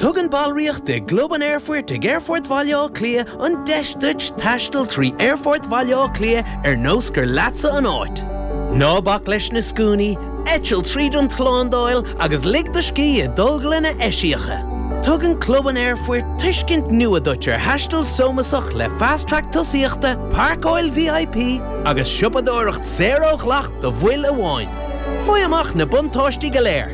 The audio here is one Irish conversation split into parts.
Tugann ballraíocht i gClub an Aerfoirt ag Aerfort Bhaile Átha Cliath an deis duit taisteal trí Aerfort Bhaile Átha Cliath ar nós gur leatsa an áit. Ná bac leis na scuainí, eitil tríd an tslándáil agus lig do scíth i dtolglanna eisiacha. Tugann Club an Aerfoirt tuiscint nua duit ar thaisteal sómasach le Fast Track Tosaíochta, Pairceáil VIP agus siopadóireacht saor ó dhleacht do bhaill amháin. Faigh amach na buntáistí go léir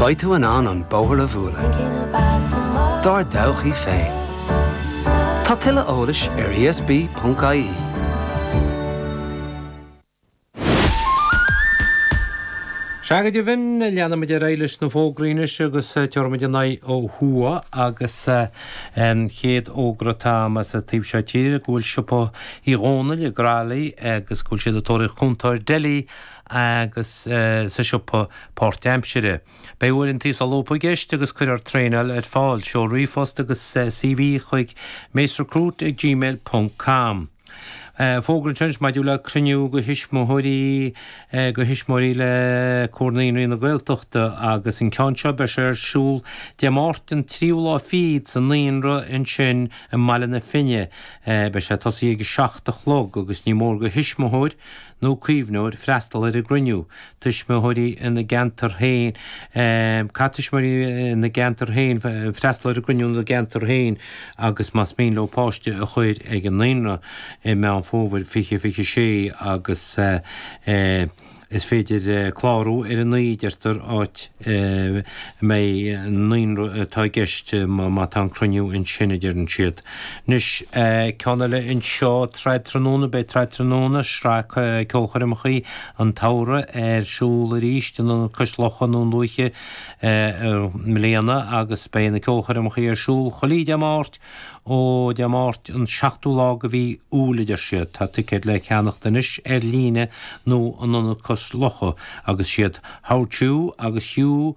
Beidh tú in ann an bóthar a mhúnlú dár dtodhchaí féin. Tá tuilleadh eolais ar ESB.ie. Sea, go deimhin, leanfaimid ar aghaidh leis na fógraí anois agus tabharfaimid an aghaidh ó thuaidh agus an chéad fhógra atá ann as an taobh seo tíre go bhfuil Siopa Uí Dhónaill i gCroithlí agus go bhfuil siad ag tóraíocht cúntóir deilí agus sa siopa páirtaimseartha. Beidh uaireantaí solúbtha i gceist agus cuirfear traenáil ar fáil. Seol ríomhphost agus CV chuig macerecruit ag gmail ponc com. Fógra anseo anois maidir le cruinniú do thuismitheoirí do thuismitheoirí le Comhar Naíonraí na Gaeltachta agus an ceann seo, beidh sé ar siúl Dé Máirt an 3ú lá fichead sa Naíonra ansin i mBaile na Finne. Beidh sé ag tosaí ag a seacht a chlog agus ní mór do thuismitheoir, nó caomhnóir freastal ar an gcruinniú, tuismitheoirí ina gceantar féin, caithfidh tuismitheoirí ina gceantar féin freastal ar an gcruinniú ina gceantar féin agus más mian leo páiste a chur ag an naíonra i Meán Fómhair 2026 agus is féidir clárú ar an, a deirtear, áit a mbeidh an naíonra atá i gceist má tá an cruinniú ansin a deireann siad. Anois ceann eile anseo, Trad Tráthnóna Beidh Trad Tráthnóna, sraith ceolchoirmeacha an tsamhraidh, ar siúl arís in Ionad Cois Locha, Dún Lúiche, i mbliana agus beidh na ceolchoirmeacha ar siúl chuile Dé Máirt ó Dé Máirt an 7ú lá de mhí Iúil, a deir siad. Tá ticéid le ceannacht anois ar líne nó in Ionad Cois Locha agus siad Howardchew agus Hugh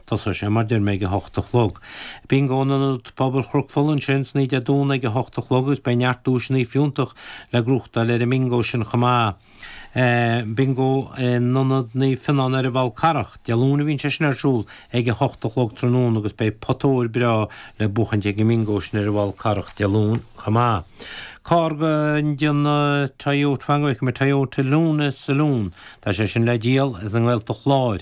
Thosaigh sé, mar deir mé, ag a hocht a chlog. Bingo in Ionad Pobail Chnoc Fola ansin san oíche Dé Luain ag a hocht a chlog agus beidh neart duaiseanna fiúntach le gnóthachtáil ar an mbingo sin chomh maith. Bingo in Ionad Naomh Fionán ar an bhFal Carrach, Dé Luain a bhíonn sé sin ar siúl, ag a hocht a chlog tráthnóna agus beidh pota óir breá le buachaint ag an mbingo sin ar an bhFal Carrach Dé Luain chomh maith. Carr le díol Toyota fan go bhfeicfidh mé Toyota Luna Saloon, tá sé sin le díol, as an nGaeltacht Láir,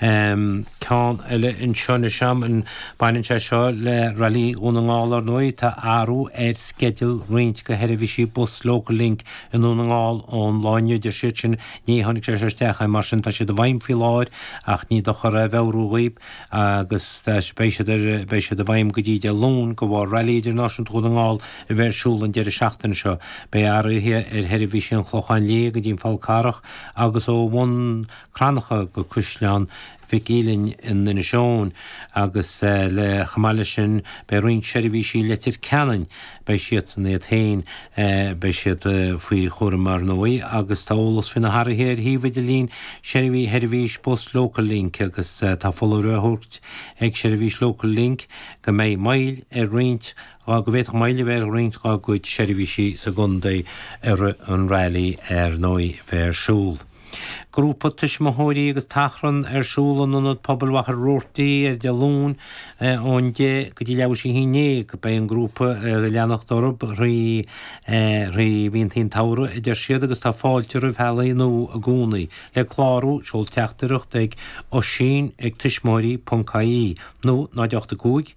Ceann eile anseo anois agam. Baineann sé seo le Railí Dhún na nGall, ar ndóigh. Tá athrú ar sceideal roinnt de sheirbhísí bus Locallink i nDún na nGall ón lá inniu, deir siad sin. Ní tháinig sé seo isteach ach inné, mar sin tá siad i bhfeidhm faoi láthair ach ní dochar é a mheabhrú dhaoibh agus beidh siad ar, beidh siad i bhfeidhm go dtí Dé Luain de bharr Railí Idirnáisiúnta Dhún na nGall a bheith ar siúl an deireadh seachtaine seo. Beidh athruithe ar sheirbhísí an Chlocháin Léith go dtí an Fál Carrach agus ó Bhun Cranncha go Coisméig agus Málainn i nInis Eoghain agus chomh maith leis sin beidh roinnt seirbhísí Leitir Ceanainn, beidh siadsan iad féin, beidh siad faoi chúram ar ndóigh agus tá eolas faoi na hathruithe ar shuíomh idirlín sheirbhí sheirbhís bus Locallink agus tá foláireamh á thabhairt ag seirbhís Locallink go mbeidh moill ar roinnt go bhféadfadh moill a bheith ar roinnt dá gcuid seirbhísí sa gcontae i rith an railí ar ndóigh a bheidh ar siúl. Grúpa tuismitheoirí agus tachran ar siúl in Ionad Pobail Mhachaire Rabhartaigh ar Dé Luain ón 10 go dtí leathuair tar éis a haon déag. Beidh an grúpa ag leanacht orthu thrí mhíontaí an tsamhraidh a deir siad agus tá fáilte roimh theaghlaigh nua i gcónaí. Le clárú, seol teachtaireacht chuig, Oisín ag tuismitheoirí ponc ie, nó 0 8 5,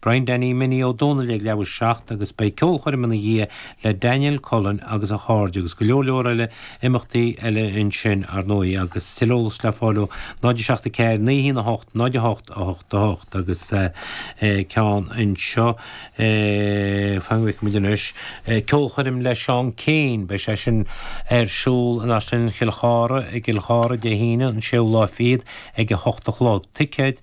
Brian Danny Minnie Ó Dónaill ag leathuair tar éis a seacht agus beidh ceolchoirm ina dhiaidh le Daniel Cullen agus a chairde agus go leor leor eile imeachtaí eile ansin, ar ndóigh, agus tuilleadh eolas le fáil ó 0 7 4 9 1 8 0 8 8 8 agus ceann anseo fanfaidh muid anois ceolchoirm le Seán Keane, beidh sé sin ar siúl in Áislann Chill Chártha i gCill Chártha Dé hAoine, an 6ú lá fichead ag a hocht a chlog. Ticéid.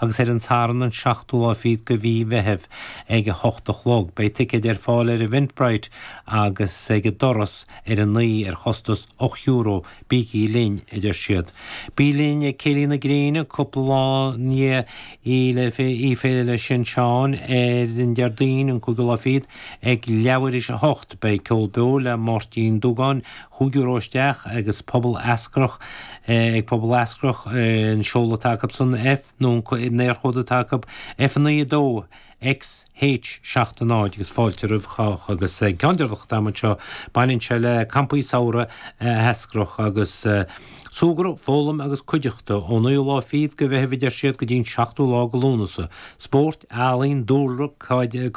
agus ar an Satharn an seachtú lá fichead de Mhí an Mheithimh ag a hocht a chlog. Beidh ticéid ar fáil ar Eventbrite agus ag an doras ar an oíche ar chostas ocht euro, bígí linn, a deir siad. Bí linn ag Céilí na Gréine cúpla lá i ndiaidh Oíche Fhéile Sin Seáin ar an Déardaoin an cúigiú lá fichead ag leathuair tar éis a hocht. Beidh ceol beo le Máirtín Dúgáin, Cúig euro isteach agus Pobal Eascrach Ag Pobal Eascrach, an seoladh atá acu san F, nó an t-éarchód atá acu, F9, 2, X, H, 7, 0, agus fáilte roimh chách, agus an ceann deireanach atá agam anseo, baineann sé le Campaí Samhraidh Eascrach, agus súgradh, foghlaim agus cuideachta, ón 9ú lá fichead de Mheitheamh, a deir siad, go dtí an 7ú lá de Lúnasa, spórt, ealaín, dúlra, cairde,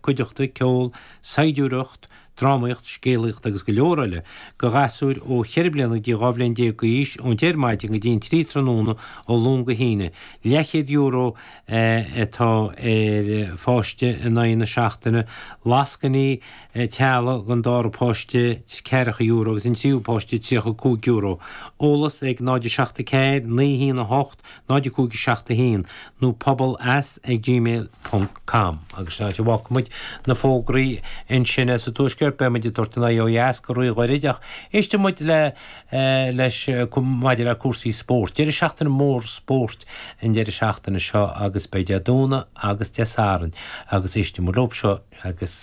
cuideachta, ceol, saighdiúireacht, drámaíocht, scéalaíocht agus go leor eile, do ghasúir ó cheithre bliana go dtí dhá bhliain déag d'aois, ón deich ar maidin go dtí an trí tráthnóna ó Luan go hAoine. Leathchéad euro atá ar pháiste in aghaidh na seachtaine, lascainí teaghlaigh don dara páiste ceathracha euro agus an tríú páiste €35. Eolas ag 0 7 4 9 1 8. 05 7 1 nó pobal at gmail ponc com agus sin áit a bhfágfaidh muid na fógraí ansin sa Tuaisceart beidh muid ag tabhairt ár n-aghaidh ó dheas go rí-ghairid ach éistfidh muid le leis maidir le cúrsaí spóirt deireadh seachtaine mór spóirt an deireadh seachtaine seo agus beidh Dé Domhnaigh agus Dé Sathairn agus éistfidh muid leo seo agus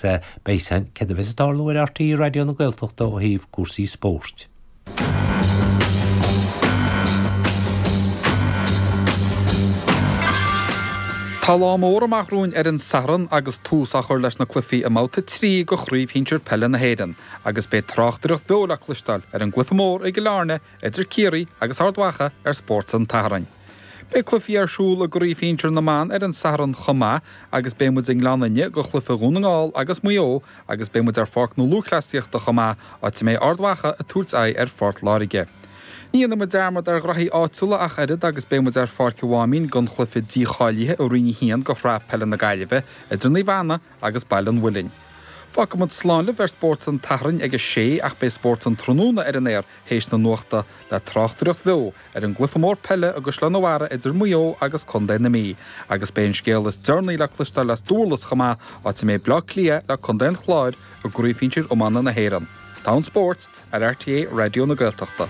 beidh seans céard a bheas ag tarlú ar RTÉ Raidió na Gaeltachta ó thaobh cúrsaí spóirt. Tá lá mór amach romhainn ar an Satharn agus tús á chur leis na cluichí i mBabhta 3 de Chraobh Shinsir Peile na hÉireann agus beidh tráchtaireacht bheo le cloisteáil ar an gcluiche mór i gCill Airne idir Ciarraí agus Ard Mhacha ar Spórt an tSathairn. Beidh cluichí ar siúl i gCraobh Shinsir na mBan ar an Satharn chomh maith agus beidh muid i nGleann Fhinne do chluiche Dhún na nGall agus Mhaigh Eo agus beidh muid ar Pháirc na Lúthchleasaíochta chomh maith, áit a mbeidh Ard Mhacha ag tabhairt aghaidh ar Phort Láirge. Ní dhéanfaidh muid dearmad ar ghnaithí áitiúla ach oiread agus beidh muid ar Pháirc an Mháimín don chluiche dícháilithe i Roinn 1 de Shraith Peile na Gaillimhe idir Naomh Anna agus Baile an Mhuilinn. Fágfaidh muid slán libh ar Spórt an tSathairn ag a sé ach beidh Spórt an tráthnóna ar an aer théis na nuachta le tráchtaireacht bheo ar an gcluiche mór peile i gCaisleán an Bharraigh idir Maigh Eo agus contae na Mí, agus beidh an scéal is deireanaí le cloisteáil as Dúrlas chomh maith, áit a mbeidh Bleá Cliath le contae an Chláir i gCraobh Shinsir Iomána na hÉireann. Togha spóirt ar RTÉ Raidió na Gaeltachta.